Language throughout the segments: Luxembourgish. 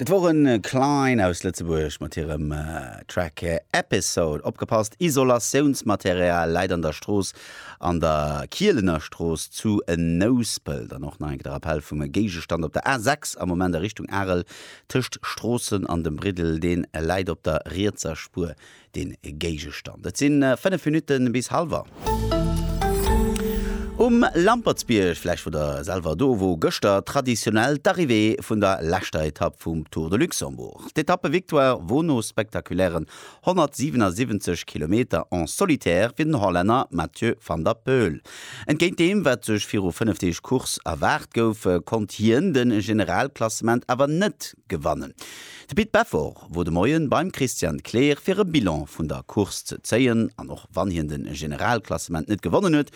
Dat woren Klein aus Lëtzebuerg mat hirem Track Episode. Opgepasst, Isolatiounsmaterial läit an der Strooss an der Kielener Strooss zu Nouspelt. An och nach eng Kéier de Rappell vum Géigestand op der A6 am Moment a Richtung Arel tëscht Stroossen an dem Briddel, dee läit op der rietser Spuer den Géigestand. Et sinn 5 Minuten bis halwer. Um Lampertsbierg, vläicht wor der selwer do, wor gëschter traditionnel d'Arrivée vun der leschter Etapp vum Tour de Luxembourg. D'Etappe-Victoire wor no spektakulären 177 Kilometer en solitaire fir den Hollänner Mathieu van der Poel. Entgéint deem wat sech viru 5 Deeg Course erwaart gouf, konnt hien de Generalklassement awer net gewannen. De Pit Beffort wor de Moien beim Christian Kleer fir e Bilan vun der Course ze zéien an och wann hien de Generalklassement net gewonnen huet,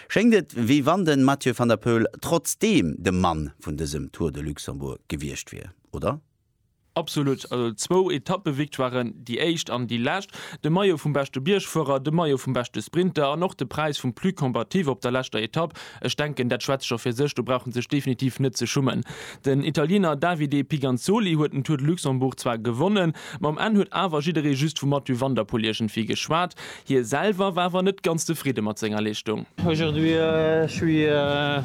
schéngt et wéi wann de Mathieu van der Poel trotzdeem de Mann vun dësem Tour de Luxembourg gewiescht wier, oder? Absolut, also zwou Etappevictoiren, déi éischt an déi lescht, de Maillot vum beschte Biergfuerer, de Maillot vum beschte Sprinter an och de Präis vum Plus Combatif op der leschter Etapp, Ech denken, dat schwätzt scho fir sech, do brauch en sech definitiv net ze schummen. Den Italiener Davide Piganzoli huet den Tour de Luxembourg zwar gewonnen, ma um Enn huet awer jidderee just vum Mathieu van der Poel iergendwéi geschwat. Hie selwer war awer net ganz zefridde mat senger Leeschtung. Aujourd'hui je suis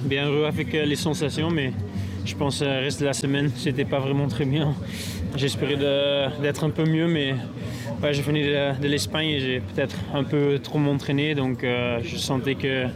bien heureux avec les sensations mais je pense reste de la semaine c'etait pas vraiment très bien j'espérais d'être un peu mieux mais je venais de l'Espagne et j'ai peut-être un peu trop m'entraîner donc je sentais que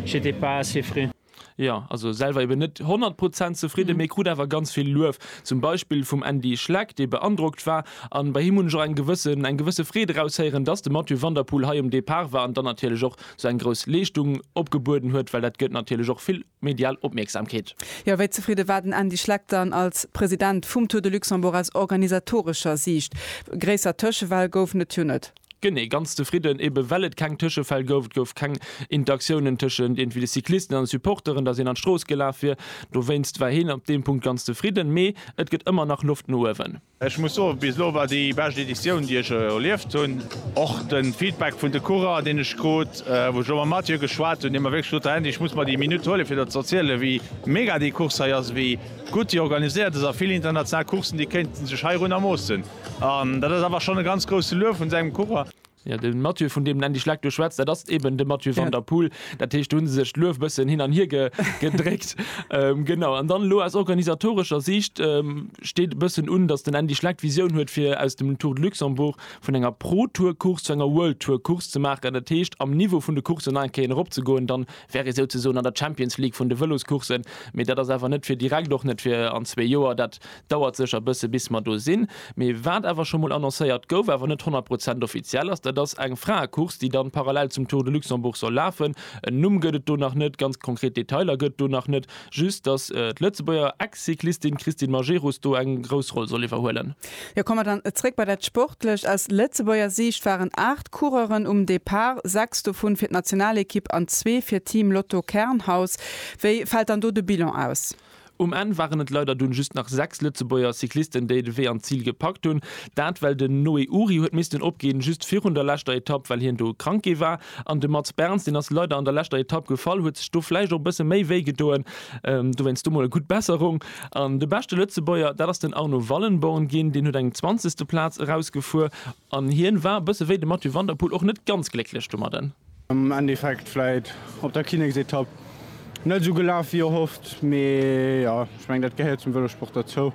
J'étais pas assez frais. Jo, also selwer eben net 100 Prozent zefridden, mee krut awer ganz vill Luef, zum Beispill vum Andy Schleck, dee beandrockt war. An bei him hunn ech och eng gewëssen, eng gewësse Freed eraushéieren, dass de Mathieu van der Poel hei um Depart war an dann natierlech och sou eng grouss Leeschtung opgebueden huet, well dat gëtt natierlech och vill medial Opmierksamkeet. Jo, wéi zefridde war den Andy Schleck dann als President vum Tour de Luxembourg aus organisatorescher Siicht? Gréisser Tëschewell gouf et jo net. Genee, ganz zefridden, eben well et keng Tëschefäll gouf. Et gouf keng Interaktiounen tëschent iergendwéi de Cyclisten an de Supporteren, dass een an d'Strooss gelaf wier. Dowéinst war hien op deem Punkt ganz zefridden. Mee et gëtt ëmmer nach Loft no uewen. Ech muss soen, bis elo war déi bescht Editioun, déi ech erlieft hunn. Och de Feedback vun de Coureuren, deen ech krut, wou ech elo mam Mathieu geschwat hunn, dee mer wierklech sot, Här Hendy, ech muss mer déi Minutt huelen, fir der ze erzielen, wéi mega déi Course hei ass, wéi gutt déi organiséiert ass a vill international Coursen, déi kéinten sech heirunner moossen. An dat ass awer schonn e ganz grousse Luef vun sengem Coureur. Jo, de Mathieu, vun deem en endlech lekt, du schwätz, dat ass eben de Mathieu van der Poel. Dat heescht, do hu se sech d'Luef e bëssen hin an hier gedréckt. Genau. An dann elo aus organisatorescher Siicht steet e bëssen un, datt den Andy Schleck d'Visioun huet, fir aus dem Tour de Luxembourg, vun enger Pro-Tour-Course zu enger World-Tour-Course ze maachen. Dat heescht, am Niveau vun de Courssen nach eng Kéier erop ze goen. Da wär ee souzesoen an der Champions League vun de Vëloscoursen. Mee dat ass awer net fir direkt, och net fir an zwee Joer. Dat Dauert sécher bësse bis mer do sinn. Mee wat awer scho mol annoncéiert gouf, awer net 100 Prozent offiziell ass, dat ass eng Fraecourse, déi dann parallel zum Tour de Luxembourg soll lafen. En Numm gëtt et do nach net, ganz konkret Detailer gëtt et do nach net, just dass d'Lëtzebuerger Ex-Cyclistin Christine Majerus do eng grouss Roll soll iwwerhuelen. Jo, komme mer dann zréck bei dat Sportlecht. Aus Lëtzebuerger Siicht waren 8 Coureuren um Depart, 6 dovun fir d'Nationalekipp an zwee fir Team Lotto Kernhaus. Wéi fält dann do de Bilan aus? Um Enn waren et leider dunn just nach 6 Lëtzebuerger Cyclisten déi de Wee an d'Zil gepackt hunn. Dat well den Noé Uhry huet missten opginn, just virun der leschter Etapp, well hien do krank gi war. An de Mats Berns, deen ass leider an der leschter Etapp gefall, huet sech do vläicht och e bësse méi wéi gedoen. Dowéinst do mol e gutt Besserung. An de beschte Lëtzebuerger, dat ass den Arno Wallenborn ginn, deen huet eng zwanzegste Plaz erausgefuer. An hien war, bësse wéi de Mathieu van der Poel, och net ganz glécklech domadden. Am Endeffekt vläit op der Kinneksetapp net esou gelaf wéi erhofft, mee jo, ech mengen dat gehéiert zum Vëlosport derzou.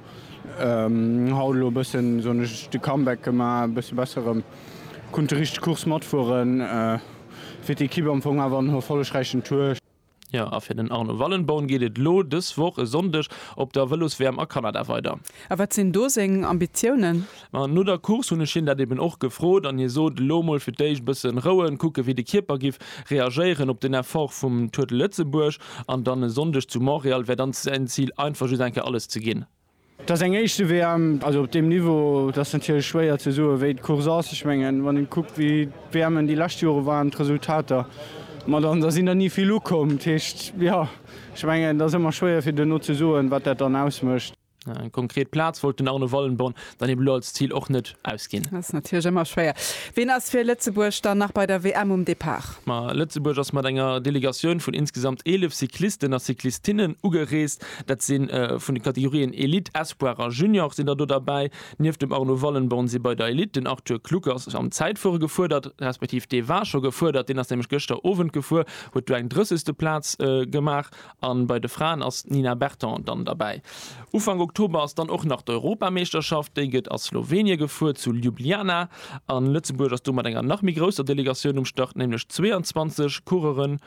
Haut elo e bëssen, soen ech, de Comeback gemaach, e bësse besser erëm kunt déi richteg Course matfueren, fir d'Ekipp am Fong awer en erfollegräichen Tour. Jo, a fir den Arno Wallenborn geet et elo dës Woch e Sonndeg op der Vëlos-WM a Kanada weider. A wat sinn do seng Ambitiounen? Ma no der Course hunn ech hien dat eben och gefrot an hie sot, elo mol fir d'éischt e bëssen rouen, kucke wéi de Kierper giff reagéieren op den Effort vum Tour de Lëtzebuerg. An dann e Sonndeg zu Montréal wär dann säin Zil, einfach just eng Kéier alles ze ginn. Et ass eng éischte WM, also op deem Niveau, et ass natierlech schwéier ze soe wéi d'Course ass. Ech mengen, wann ee kuckt wéi d'WMen déi lescht Jore waren, d'Resultater, ma dann da sinn der ni vill ukomm. Dat heescht, jo, ech mengen, et ass ëmmer schwéier fir duerno ze soen, wat dat dann ausmécht. Eng konkret Plaz wollt den Arno Wallenborn dann eben elo als Zil och net ausginn. Ass natierlech ëmmer schwéier. Wien ass fir Lëtzebuerg dann nach bei der WM um Depart? Ma Lëtzebuerg ass mat enger Delegatioun vun insgesamt 11 Cyclisten a Cyclistinnen ugereest. Dat si vun de Kategorien Elite, Espoir a Junior sinn der do derbäi. Nieft dem Arno Wallenborn si bei der Elite den Arthur Kluckers am Zäitfuere gefuerdert, respektiv dee war scho gefuerdert, deen ass nämlech gëschter Owend gefuer, huet do eng drëssegste Plaz gemaach. A bei de Fraen ass d'Nina Berton dann derbäi. Ufank Oktober ass dann och nach d'Europameeschterschaft, déi gëtt a Slowenie gefuer, zu Ljubljana. A Lëtzebuerg ass do mat enger nach méi grousser Delegatioun um Start, nämlech 22 Coureuren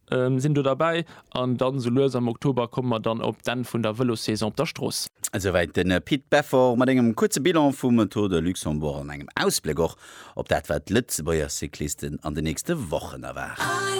Sinn do derbäi an dann esou lues am Oktober komme mer dann op d'Enn vun der Vëlossaison op der Strooss. Esouwäit den Pit Beffort mat engem kuerze Bilan vum Tour de Luxembourg an engem Ausbléck och op dat wat d'Lëtzebuerger Cyclisten an den nächste Wochen erwaart.